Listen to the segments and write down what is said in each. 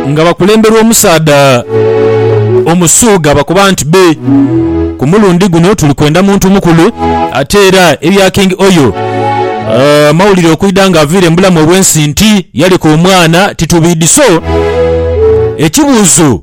nga bakulemberwa omusaadha Omusuuga bakoba nti be ku mulundi guno tuli kwenda muntu mukulu ate era ebya King Oyo amawulire okwidha nga aviire mu bulamu obw'ensi nti yaleka omwana titubiidhi so ekibuuzo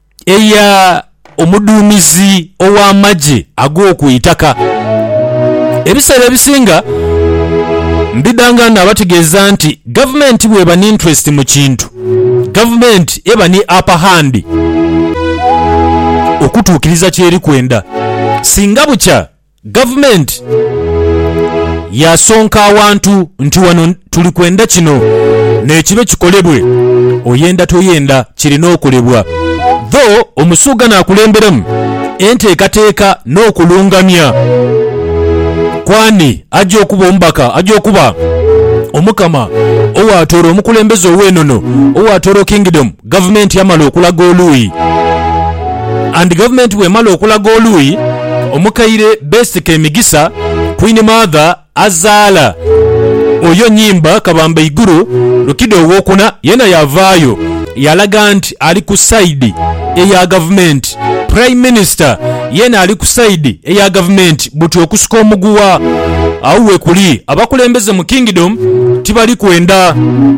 eya omuduumizi ow'amagye ag'oku itaka. Ebiseera ebisinga mbidhanga naabategeeza nti gavumenti bw'eba ni interest mu kintu, gavumenti eba ni upper hand okutuukiriza ky'eri kwenda. Singa bukya Gavumenti yaasonka awantu nti wano tuli kwenda kino nekibe kikolebwe, oyenda toyenda kirina okolebwa dho Omusuuga naakulemberemu enteekateeka n'okulungamya kw'ani aja okuba omubaka aja okuba Omukama owaatoora omukulembeze ow'enono, owaatooro Kingdom. Gavumenti yamala okulaga oluuyi and gavumenti bwemala okulaga oluuyi omukaire beesika emigisa Queen Mother azaala oyo Nyimba Kabamba Iguru Lukido Owokuna yena yavaayo yalaga nti ali ku side eya gavumenti Prime Minister yena ali ku side eya gavumenti buti okusika omuguwa agho wekuli abakulembeze mu Kingdom tibali kwenda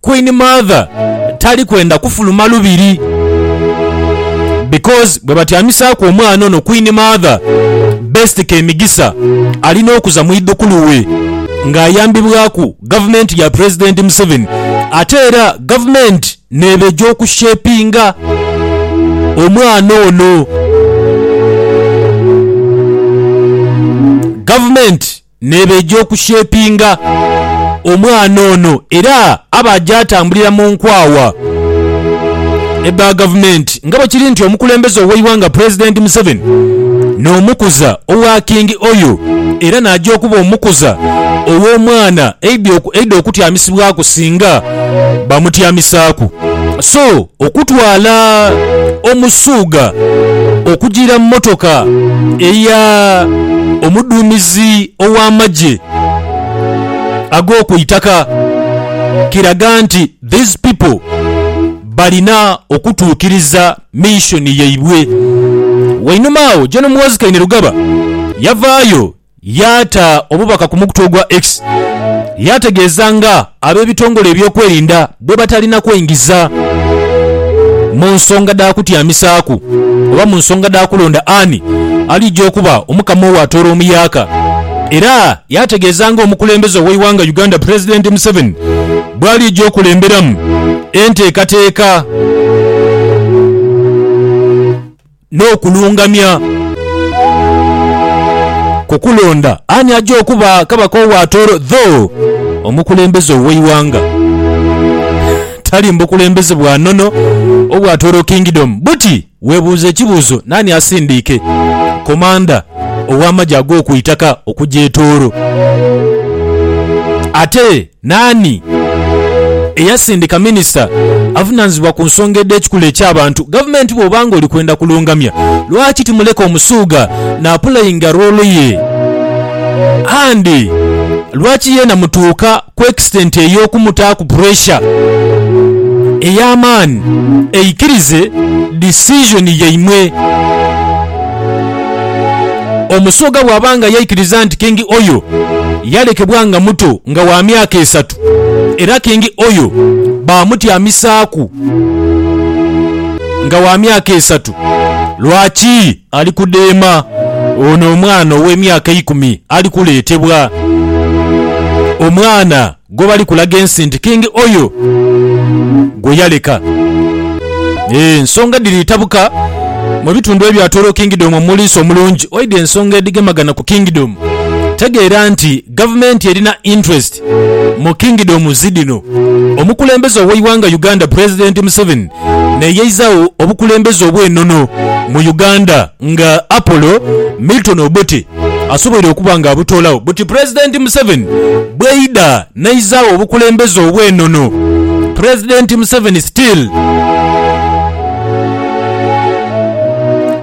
Queen Mother tali kwenda kufuluma lubiri because bwebatyamisaaku omwana ono Queen Mother Best Kemigisa alina okuza mwidhukulu we nga ayambibwaku gavumenti ya President Museveni ate era gavumenti neeba egy'oku shapinga omwana ono. Gavumenti Nebeja okushepinga omwana ono era abaja atambulira mu nkwawa edha gavumenti nga bwekiri nti omukulembeze oweighanga pulezidenti Museveni nomukuza owa King Oyo era naja okuba omukuza owomwana eidha okutyamisibwaku singa bamutyamisaaku so Okutwala Omusuugha okujiira mu motoka eya omuduumizi ow'amagye ag'okwitaka kiraga nti these people balina okutuukiriza mission yaibwe. Wainuma agho Gen Muhoozi Kainerugaba yavaayo Yaata obubaka ku mukutu ogwa X yaategeeza nga ab'ebitongole ebyokwerinda bwebatalina kwengiza mu nsonga dha kutyamisaaku oba mu nsonga dha kulonda ani alija okuba Omukama owa Tooro Omuyaaka era yaategeeza nga omukulembeze ow'eighanga Uganda Pulezidenti Museveni bwalija okulemberamu enteekateeka n'okulungamya. Ku kulonda ani aja okuba kabaka owa Tooro dho omukulembeze ow'eighanga, tali mu bukulembeze bwa nono obwa Tooro Kingdom. Buti webuuze ekibuuzo naani asindiike komanda ow'amagye ag'oku itaka okuja e Tooro. Ate Naani eyasindika minisita avunaanizibwa ku nsonga edh'ekikula eky'abantu? Gavumenti bw'oba ng'oli kwenda kulungamya, lwaki timuleka Omusuuga n'apulayinga roolo ye? And lwaki yeena mutuuka ku extent ey'okumutaaku puresha ey'amaani aikirize decision yaimwe? Omusoga bw'aba nga yaikiriza nti Kingi Oyo yalekebwa nga muto nga wa myaka esatu era Kingi Oyo baamutyamisaaku nga wa myaka esatu, lwaki ali kudheema ono omwana ow'emyaka eikumi ali kuleetebwa? Omwana. Go bali kulaga ensi nti Kingi oyo gwe yaleka. Ensonga dhiri tabuka mu bitundu ebyatoolo Kingdom omuliisa omulungi. Oidha ensonga edhigemagana ku Kingdom, tegeera nti gavumenti erina interest mu Kingdom zi dhino. Omukulembeze ow'eighanga Uganda Pulezidenti Museveni neyeizagho obukulembeze obw'enono mu Uganda nga Apollo Milton Obote. asoboire okuba nga abutoolagho buti Pulezidenti Museveni bweidha neizaagho obukulembeze obw'enono Pulezidenti Museveni still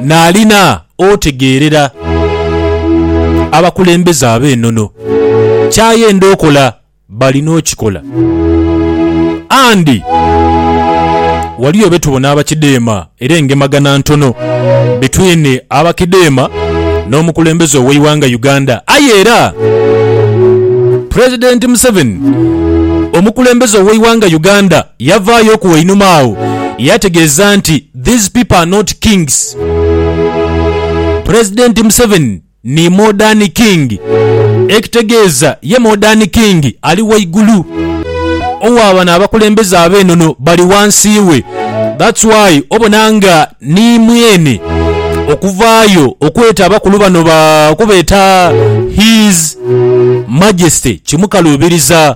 naalina otegeerera abakulembeze ab'enono kyayenda okola. Bali n'okikola. And waliyo betubona abakideema era engemagana ntono between abakideema n'omukulembeze ow'eighanga Uganda aye era President Museveni omukulembeze ow'eighanga Uganda yavaayooku einhuma agho yategeeza nti these people are not kings President Museveni ni Modern King, ekitegeeza ye Modern King ali waigulu owa bano abakulembeze ab'enono bali wansi we that's why obona nga ni mweene okuvaayo okweeta abakulu bano ba okubeeta His Majesty kimukaluubiriza.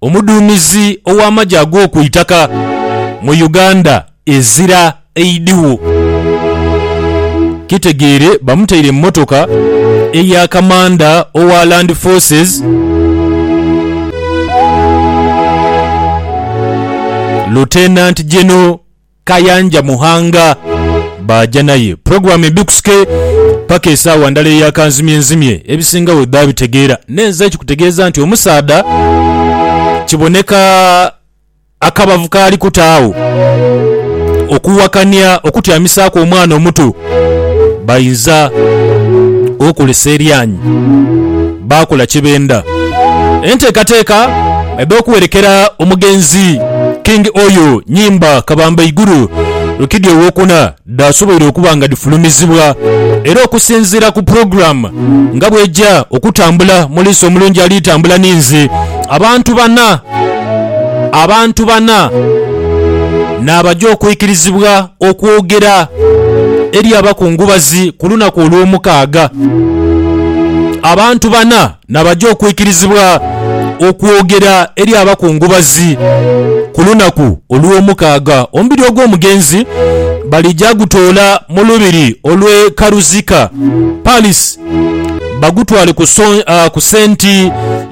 Omuduumizi ow'amagye ag'oku itaka mu Uganda ezira eidhigho kitegeere bamutaire mu mmotoka eya kamanda owa Land Forces, Lieutenant General Kayanja Muhanga baaja naye. Pulogulaamu embikusike paka esaawa ndala eya kanzimyenzimye, ebisinga bwe biba bitegeera. N'enze kikutegeeza nti omusaadha kiboneka akabavu k'ali kuta agho okuwakania okutyamisaaku omwana omuto bainza okolesa eryanyi. baakola kye benda. Enteekateeka edh'okuwerekera omugenzi King Oyo Nyimba Kabamba Iguru Rukidi Owokuna dhaasoboire okuba nga dhifulumizibwa era okusinziira ku pulogulaamu nga bw'eja okutambula mu Liisa Omulungi Ali Tambula Ninze, abantu bana abantu bana n'abaja okwikirizibwa. okwogera eri abakungubazi ku lunaku olw'omukaaga. Abantu bana nabaja okwikirizibwa okwogera eri abakungubazi ku lunaku olw'omukaaga. Omubiri ogw'omugenzi balija gutoola mu lubiri olw'e Karuzika Palace bagutwale ku senti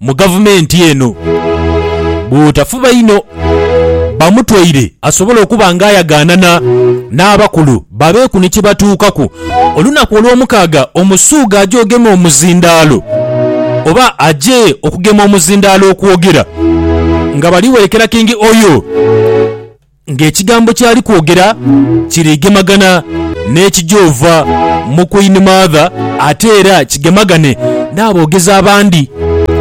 mu gavumenti eno bw'otafuba inho bamutwaire asobole okuba nga ayagaanana n'abakulu babeeku ni kye batuukaku. Olunaku Olwomukaaga Omusuuga aje ogema omuzindaalo oba aje okugema omuzindaalo okwogera nga bali werekera King Oyo. ng'ekigambo ky'ali kwogera kiri gemagana n'ekigyova mu Queen Mother ate era kigemagane n'aboogezi abandi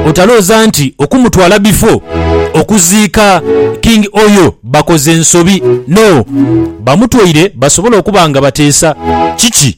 otalooza nti okumutwala bifo okuziika King Oyo bakoze nsobi no bamutwaire basobole okuba nga bateesa kiki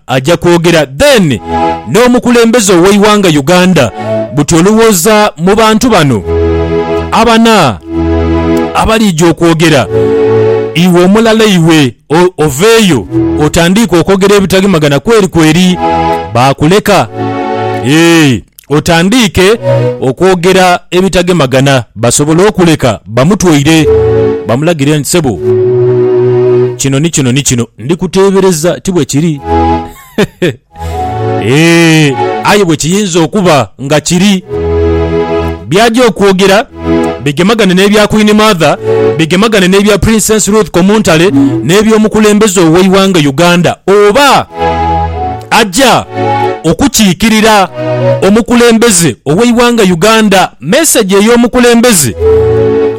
Aja kwogera then n'omukulembeze oweighanga Uganda buti olowooza mu bantu bano abana abalija okwogera iwe omulala iwe oveeyo otandiike okwogera ebitagemagana kweri kweri baakuleka eeh otandiike okwogera ebitagemagana basobole okuleka bamutwaire. Bamulagire nti, Ssebo, kino ni kino ni kino. Ndi kuteebereza ti bwe kiri? Eeh, aye bwe kiyinza okuba nga kiri. By'aja okwogera. bigemagane n'ebya Queen Mother, bigemagane n'ebya Princess Ruth Komuntale n'eby'omukulembeze ow'eighanga Uganda oba aja okukiikirira omukulembeze ow'eighanga Uganda. Mesegi ey'omukulembeze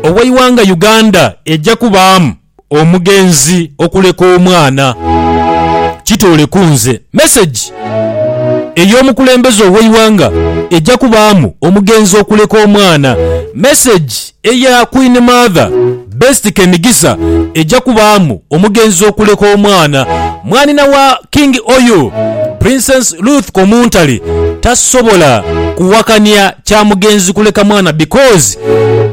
ow'eighanga Uganda eja kubaamu. omugenzi okuleka omwana. Kitoole ku nze. Message ey'omukulembeze ow'eighanga eja kubaamu omugenzi okuleka omwana. Message eya Queen Mother Best Kemigisa eja kubaamu omugenzi okuleka omwana. Mwanhina wa King Oyo, Princess Ruth Komuntale tasobola kuwakania kya mugenzi kuleka mwana because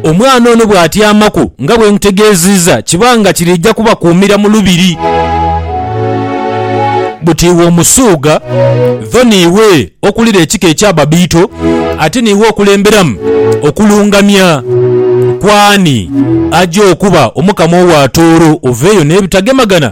omwana ono bw'atyamaku nga bwe nkutegeeziiza kiba nga kiriija kubakuumira mu lubiri. Buti iwe Omusuuga dho niiwe okulira ekika eky'Ababiito ate niiwe okulemberamu okulungamya kw'ani aja okuba Omukama owa Tooro. Oveeyo n'ebitagemagana.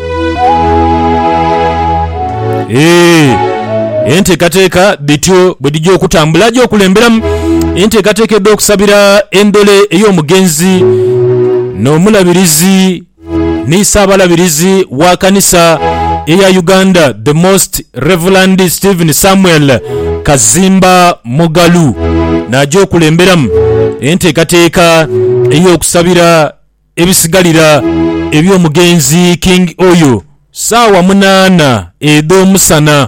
Eeh, enteekateeka dhityo bwe dhija okutambula aja okulemberamu enteekateeka edh'okusabira endole ey'omugenzi n'Omulabirizi ni Ssaabalabirizi wa Kanisa eya Uganda The Most Reverend Stephen Samuel Kazimba Mugalu n'aja okulemberamu enteekateeka ey'okusabira Ebisigalira eby'omugenzi King Oyo, saawa munaana edh'omusana.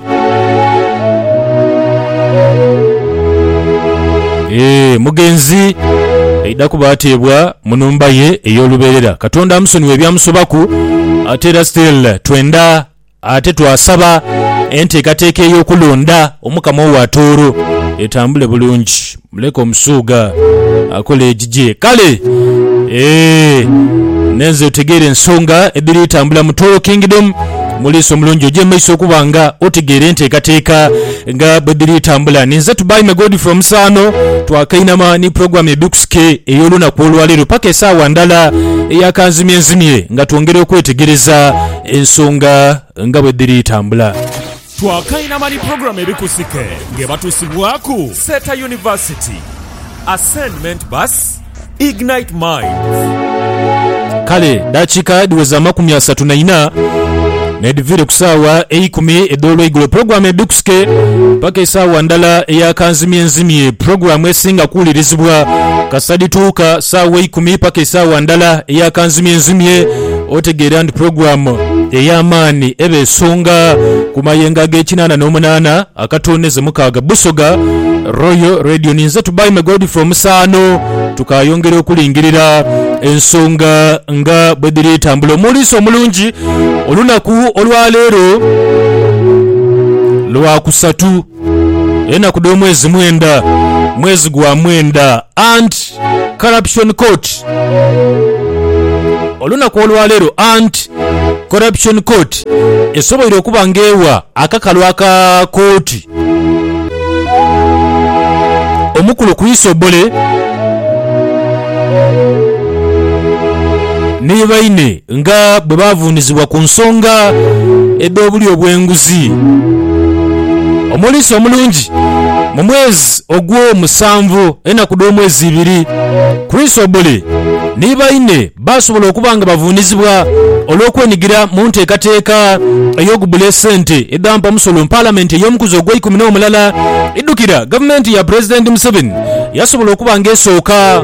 Eeh, omugenzi aidha kuba ateebwa mu nhumba ye ey'olubeerera. Katonda amusonyiwe ebyamusobaku, ate era still twendha. Ate twasaba enteekateeka ey'okulonda Omukama owa Tooro etambule bulungi. Muleke Omusuuga akole egigye. Kale eeh nenze otegeere ensonga edhiri tambula mu Tooro Kingdom. Muliisa omulungi oje maiso okuba nga otegeera enteekateeka nga bwedhiri tambula. Ninze Tubaime Godfrey Omusaano. Twakainama ni pulogulaamu ya Bikusike ey'olunaku olwaleero paka esaawa ndala eyakanzimyenzimye nga twongera okwetegereza Ensonga nga bwe dhiri tambula. Twakainama ni pulogulaamu ebikusike ng'ebatusibwaku Seeta University, Ascendment Bus, Ignite Minds. Kale dakiika dhiweza amakumi asatu na ina n'edhiviire ku saawa eikumi edh'olweigulo pulogulaamu ebikusike paka esaawa ndala eya kanzimyenzimye pulogulaamu esinga kuwulirizibwa kasita dhituuka saawa eikumi paka esaawa ndala eya kanzimyenzimye. otegeera nti pulogulaamu ey'amaani eba esonga ku mayengo ag'ekinaana n'omunaana akatooneze mukaaga. Busoga Royal Radio. Ninze Tubaime Godfrey Omusaano. Tukaayongera okulingirira ensonga nga bwe dhiri tambula. Omuuliisi omulungi olunaku olwa leero Lwakusatu. Enaku dh'omwezi mwenda, mwezi gwa mwenda, Anti Corruption Court. Olunaku olwaleero Anti Corruption Court esoboire okuba nga ewa akakalu aka kooti omukulu Chris Obore ni baine. Nga bwe baavuunizibwa ku nsonga edh'obulyo obw'enguzi, omuliisa omulungi mu mwezi ogwo musanvu, enaku dh'omwezi ibiri, Chrysobule ni baine baasobola okuba nga bavuunizibwa olw'okwenigira mu nteekateeka ey'okubbula esente edha mpamusolo. Palamenti ey'omukuzi ogw'eikumi n'omulala eidhukira gavumenti ya Pulezidenti Museveni yasobola okuba nga esooka.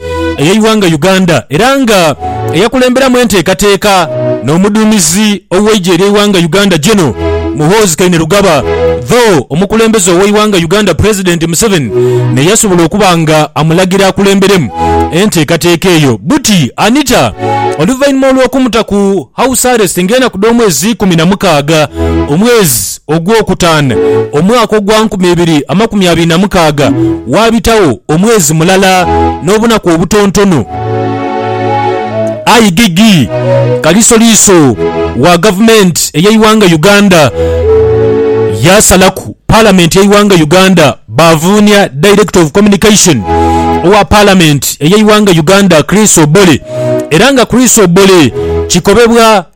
ey'eighanga Uganda era nga eyakulemberamu enteekateeka n'omuduumizi ow'eigye ery'eighanga Uganda General Muhoozi Kainerugaba though omukulembeze ow'eighanga Uganda President Museveni neyasobola okuba nga amulagira akulemberemu enteekateeka eyo buti Anita oluvainhuma olw'okumuta ku house arrest ng'enaku dh'omwezi ikumi na mukaaga omwezi Ogwokutaana, omwaka ogwa nkumi ibiri amakumi abiri na mukaaga, waabitagho omwezi mulala n'obunaku obutontono, aye Gigi Kalisoliiso wa gavumenti ey'eighanga Uganda yaasalaku Palamenti y'eighanga Uganda baavuunia Director of Communication owa Palamenti ey'eighanga Uganda Chris Obore era nga Chris Obore kikobebwa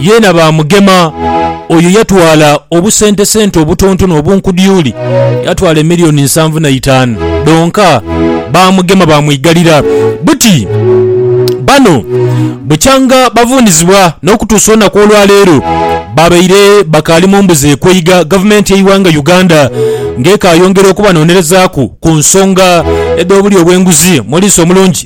yeena baamugema. Oyo yatwala obusentesente obutontono obunkudyuli, yatwala emilioni nsanvu na itaanu dhonka. Baamugema baamwigalira buti bano bukyanga bavuunizibwa n'okutuusa olunaku olwa leero babaire bakaali mu mbuzi ekweiga Gavumenti y'eighanga Uganda ng'ekaayongera okubanoonerezaaku ku nsonga edh'obulyo bw'enguzi mu liiso omulungi.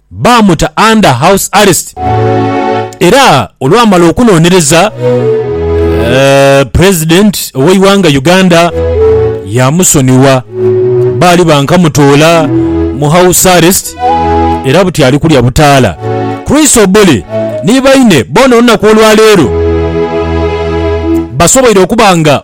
baamuta under house arrest era olwamala okunonereza president oweighanga Uganda yamusonyiwa. Baali bankamutoola mu house arrest era buti ali kulya butaala. Chris Obore ni baine boona olunaku olwaleero basoboire okuba nga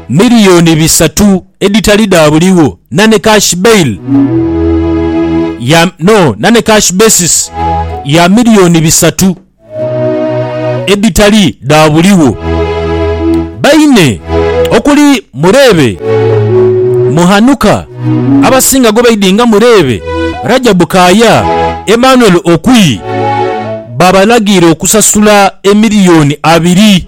Miliyooni bisatu edhitali dha buligho na ni cash bail ya no na ni cash basis ya miliyooni bisatu edhitali dha buligho. Baine okuli Mureebe, Muhanuka, abasinga gwe baidhi nga Mureebe, Rajabu Kaaya, Emmanuel Okwi, baabalagiire okusasula emiliyooni abiri.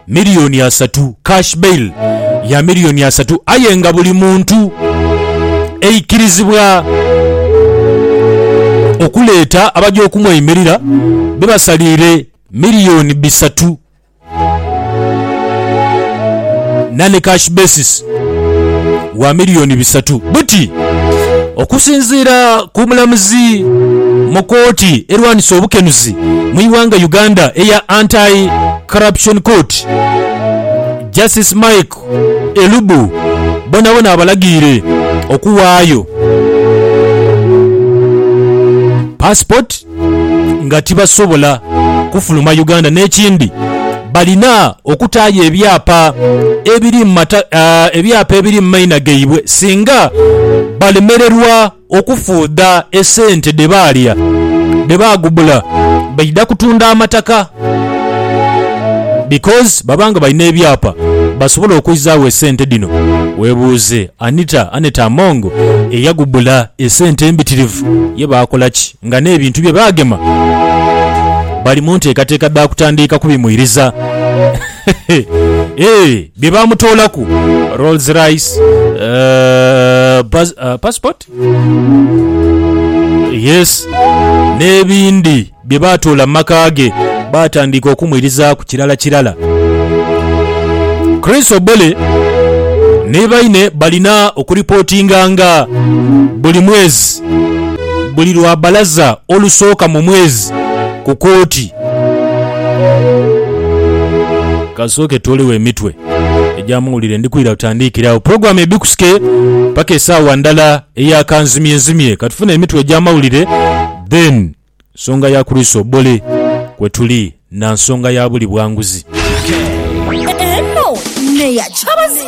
milioni asatu, cash bail ya milioni asatu aye nga buli muntu eikirizibwa okuleeta abaja okumweimirira be basaliire milioni bisatu nane cash basis wa milioni bisatu buti okusinziira ku mulamuzi mu kooti erwanisa obukenuzi mu ighanga Uganda eya Anti Corruption Court, Justice Mike Elubu bonabona abalagiire okuwaayo passport nga tibasobola kufuluma Uganda n'ekindi balina okutaayo ebyapa ebiri mu ebyapa ebiri mu maina gaibwe singa balemererwa Okufuudha esente dhe baalya dhe baagubula baidha kutunda amataka because baba nga balina ebyapa basobola okwizagho esente dhino. Weebuuze Anita Annet Among eyagubula esente embitirivu ye baakola ki nga n'ebintu bye baagema bali mu nteekateeka dha kutandiika kubimwiriza? Eehh! bye baamutoolaku, Rolls Rice, eh, pas- eh, passport yes n'ebindi bye baatoola mu maka ge baatandika okumwirizaaku kirala kirala. Chris Obole ni baine balina okuripootinganga buli mwezi buli lwa balaza olusooka mu mwezi ku kooti. Kasooke twolewo emitwe egy'amawulire ndi kwira butandiikire agho. Pulogulaamu ya Bikusike paka esaawa ndala eya kanzimyenzimye. Ka tufune emitwe egy'amawulire then nsonga ya kulwisa obubole kwe tuli na nsonga ya buli bwanguzi. Eno neya kyabazinga.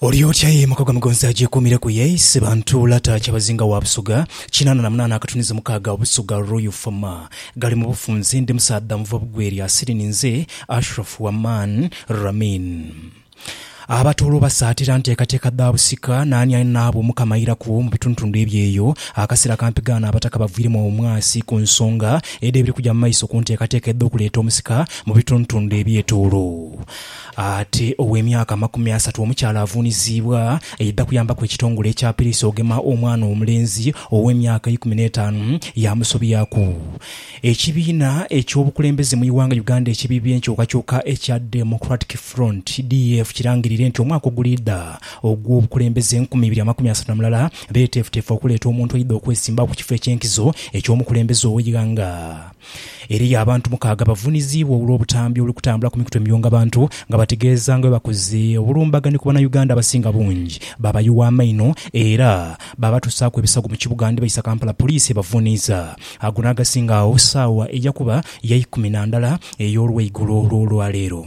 Olyoti aye maka ga Mugonzi agyekuumireku ye, Isebantu Lata Kyabazinga wa Busoga kinaana na munaana akatuniza mukaaga Busoga Royal Fama ghali mu bufunze ndi musaadha muva bugwe lya siri ninze Ashraf Waman Ramin Abatooro basaatira nteekateeka dha busika naani ali naabo Omukama airaku mu bitundutundu ebyeyo Akasera kampigaana Abataka bavwiremu omwasi ku nsonga edh'ebiri kugya mu maiso ku nteekateeka edh'okuleeta omusika mu bitundutundu ebyetoolo Ate ow'emyaka amakumi asatu omukyala avuuniziibwa yaidha kuyambaku ekitongole ekya Piriisi ogema omwana omulenzi ow'emyaka eikumi n'etaanu yaamusobyaku. Ekibiina eky'obukulembeze mu ighanga Uganda ekibi by'enkyukakyuka ekya Democratic Front, DF, kirangirire nti omwaka oguliidha ogw'obukulembeze enkumi ibiri amakumi asatu na mulala beeteefuteefu okuleeta omuntu aidha okwesimbagho ku kifo eky'enkizo eky'omukulembeze ow'eighanga. Eriyo abantu mukaaga abavuniziibwa olw'obutambi obuli kutambula ku mikutu emiyunga bantu nga bategeeza nga bwebakoze obulumbagane ku Bannayuganda abasinga bungi baabayuwa amaino era baabatusaaku ebisago mu kibuga nibaisa Kampala poliisi ebavuniiza ago n'agasinga agho saawa eyakuba ya ikumi na ndala ey'olweigulo lw'olwaleero.